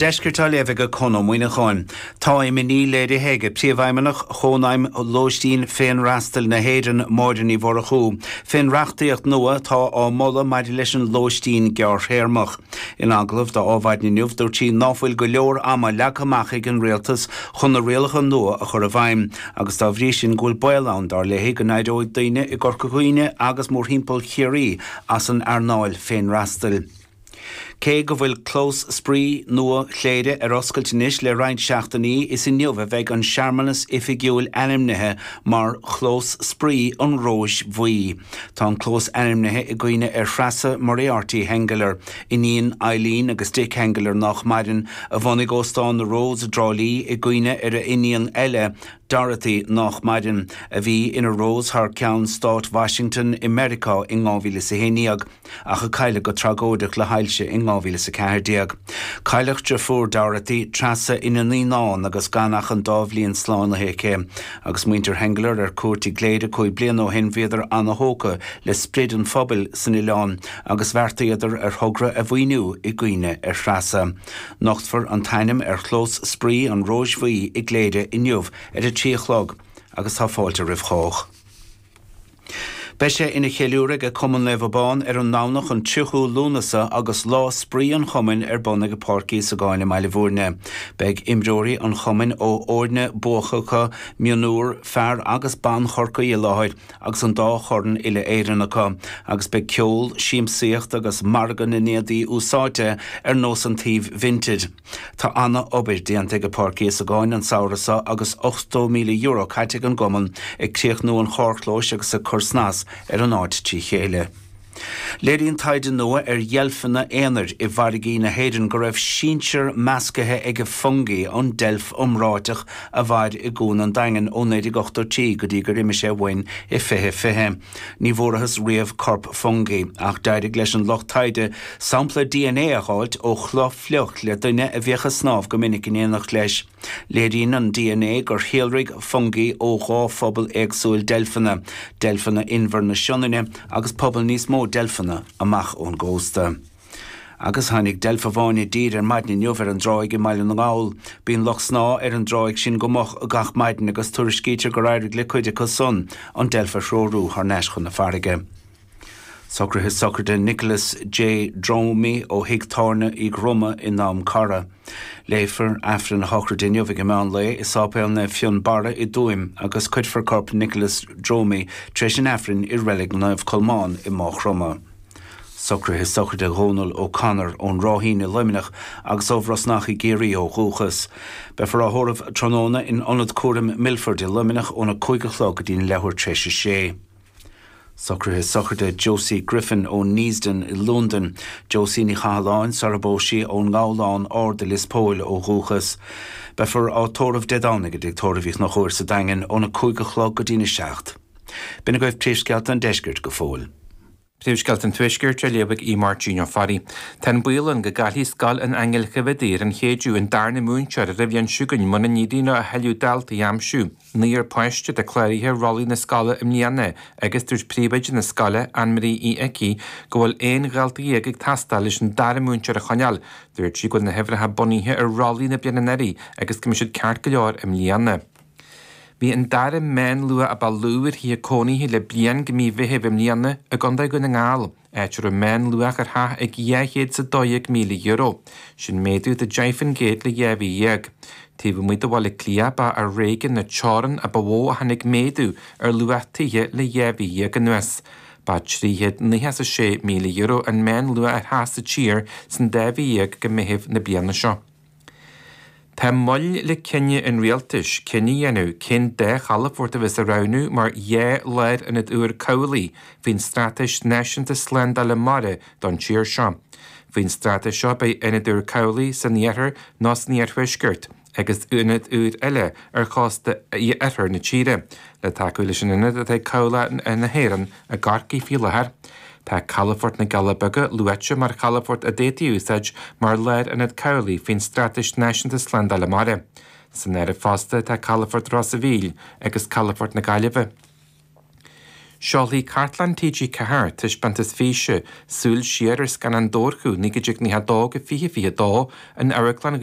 Deiscirt á léamh aige Conn Ó Muíneacháin. Tá imní léirithe aige Príomhfheidhmeannach Chónaidhm Lóistín Féinfhreastail na hÉireann, Máire Ní Mhurchú, fén reachtaíocht nua atá á moladh maidir leis an lóistín gearrthéarmach. In agallamh do Adhmhaidin inniu dúirt sí ná fuil go leor ama leagtha amach ag an Rialtas chun na rialacha nua a chur i bhfeidhm agus dá bhrí sin go bhfuil baol ann, dár léi, go n-éireoidh daoine i gCorca Dhuibhne agus mórthimpeall Chiarraí as an earnáil féinfhreastail. Cé go bhfuil clós spraoi nua Chléire ar oscailt anois le roinnt seachtainí, is inniu a bheidh an searmanas oifigiúil ainmnithe mar Chlós Spraoi an Róis Bhuí. Tá an clós ainmnithe i gcuimhne ar Threasa Moriarty Henggeler, iníon Eileen agus Dick Henggeler, nách maireann, a bhunaigh Óstán na Rose i dTrá Lí i gcuimhne ar a n-iníon eile, Dorothy, nách maireann, a bhí ina Rose thar ceann Stáit Washington i Meiriceá in 2011. ach a cailleadh go tragóideach le hailse in 2014. Cailleadh driofúr Dorothy, Treasa, ina naíonán agus gan ach an dá bhliain slánaithe aici. Agus muintir Henggeler ar cuairt i gCléire cúig bliana ó shin bhíodar ana-thógtha le sprid an phobail san oileán agus bheartaíodar ar thogra a mhaoiniú i gcuimhne ar Threasa. Nochtfar an t-ainm ar chlós spraoi an Róis Bhuí i gCléire inniu ar a trí a chlog agus tá fáilte roimh chách. Beidh sé ina cheiliúradh ag Cumann Naomh Abán ar an nDomhnach an 30ú Lúnasa agus lá spraoi an chumainn ar bun ag Páirc Íosagáin i mBaile Bhúirne. Beidh imreoirí an chumainn ó fhoirne buacacha mionúir fear agus ban Chorcaí i láthair agus an dá chorn uile Éireann acu agus beidh ceol, siamsaíocht agus margadh na n-éadaí úsáidte ar nós an tsuímh Vinted. Tá ana obair déanta ag Páirc Íosagáin an samhradh seo agus €80,000 caite ag an gcumann ag críochnú an charrchlóis agus ag cur snas ar an áit trí chéile. Léiríonn taighde nua ar dheilfeanna aonair i bhfarraigí na hÉireann go raibh sinsir meascaithe ag Fungie, an deilf iomráiteach a mhair i gCuan an Daingin ó 1983 go dtí gur imigh sé uainn i 2020. Ní bhfuarthas riamh corp Fungie ach d'éirigh leis an lucht taighde sampla dna a dh'fháilt ó chulaith fhliuch le duine a bhíodh ag snámh go minic in éineacht leis. Léiríonn an dna gur shíolraigh Fungie ó dhá phobal éagsúil deilfeanna, deilfeanna inbhir na Sionainne agus pobal níos mó deilfeanna amach ón gcósta. Agus tháinig deilf amháin i dtír ar maidin inniu ar an dtráigh i mBaile na nGall. Bíonn lucht snámha ar an dtráigh sin go moch gach maidin agus tuairiscítear gur éirigh le cuid acu san an deilf a threorú thar n-ais chun na farraige. Socraithe sochraide Nicholas J. Dromey ó thig tábhairne Uí Dhroma in Drom Cara. Léifear Aifreann a shochraide inniu ag an meán lae i Sáipéal Naomh Fionn Barra i dTuaim agus cuirfear corp Nicholas Dromey tar éis an Aifrinn i Reilig Naomh Colmán i Mághchromdha. Socruithe sochraide Dhónal O'Connor ón Ráithín i Luimneach agus ó Bhrosnach i gCiarraí ó dhúchas. Beifear á thórramh tráthnóna in Ionad Cúraim Milford i Luimneach óna 5 a chlog go dtí an leathuair tar éis a sé. Socruithe sochraide Josie Griffin ó Neasden i Lúndain. Josie Ní Chathalláin, sarar phós sí, ón nGabhlán Ard i Lios Póil ó dhúchas. Beifear á tórramh Dé Domhnaigh i dTigh Tórraimh Uí Chonchúir sa Daingean óna 5 a chlog go dtí'n 7. B'in agaibh Príomhscéalta an Deiscirt go fóill. Príomhscéalta an Tuaiscirt á léamh ag Aodh Máirtín Ó Fearraigh. Tá an baol ann go gcaillfidh Scoil an Aingil Choimhéadaí ar an Chéideadh, an darna múinteoir ar an bhliain seo chugainn mura n-éiríonn leo a thuilleadh daltaí a aimsiú. Naonúr páiste atá cláraithe ar rollaí na scoile i mbliana agus dúirt príomhoide na scoile, AnnMarie Uí Icí, go bhfuil aon dhalta dhéag ag teastáil leis an dara múinteoir a choinneáil. Dúirt sí go bhfuil na huimhreacha bunaithe ar rollaí na bliana anuraidh agus go mbeidh siad ceart go leor i mbliana. Bhí an dara meánluach a ba lú ar thithe cónaithe le bliain go mí Mheithimh i mbliana i gContae Dhún na nGall, áit a raibh meánluach ar theach ag dhá chéad is a dó dhéag míle euro, sin méadú de deich fán gcéad le dhá mhí dhéag. Taobh amuigh de Bhaile Átha Cliath, ba ar réigiún na Teorann a ba mhó a tháinig méadú ar luach tithe le dhá mhí dhéag anuas. Ba trí chéad nócha is a sé míle euro an meánluach ar theach sa tír san dá mhí dhéag go Meitheamh na bliana seo. Tá moill le cinneadh an rialtais cinneadh a dhéanamh cén dá chalafort a bheas á roghnú mar dhá lárionad úr cabhlaigh faoin Straitéis Náisiúnta Slándála Mara don tír seo. Faoin straitéis seo beidh ionad úr cabhlaigh san iarthar nó san iarthuaisceart agus ionad úr eile ar chósta oirthear na tíre le tacú leis an ionad atá ag Cabhlach na hÉireann i gCorcaigh faoi láthair. Tá Calafort na gCealla Beaga luaite mar chalafort a d'fhéadfaí a úsáid mar lárionad cabhlaigh faoin Straitéis Náisiúnta Slándála Mara. San áireamh fosta tá Calafort Ros a' Mhíl agus Calafort na Gaillimhe. Seolfaidh Cartlann TG4 taispeántas físe, Súil Siar ar Scannáin Dobharchú 1992-2022 in Amharclann Ghaoth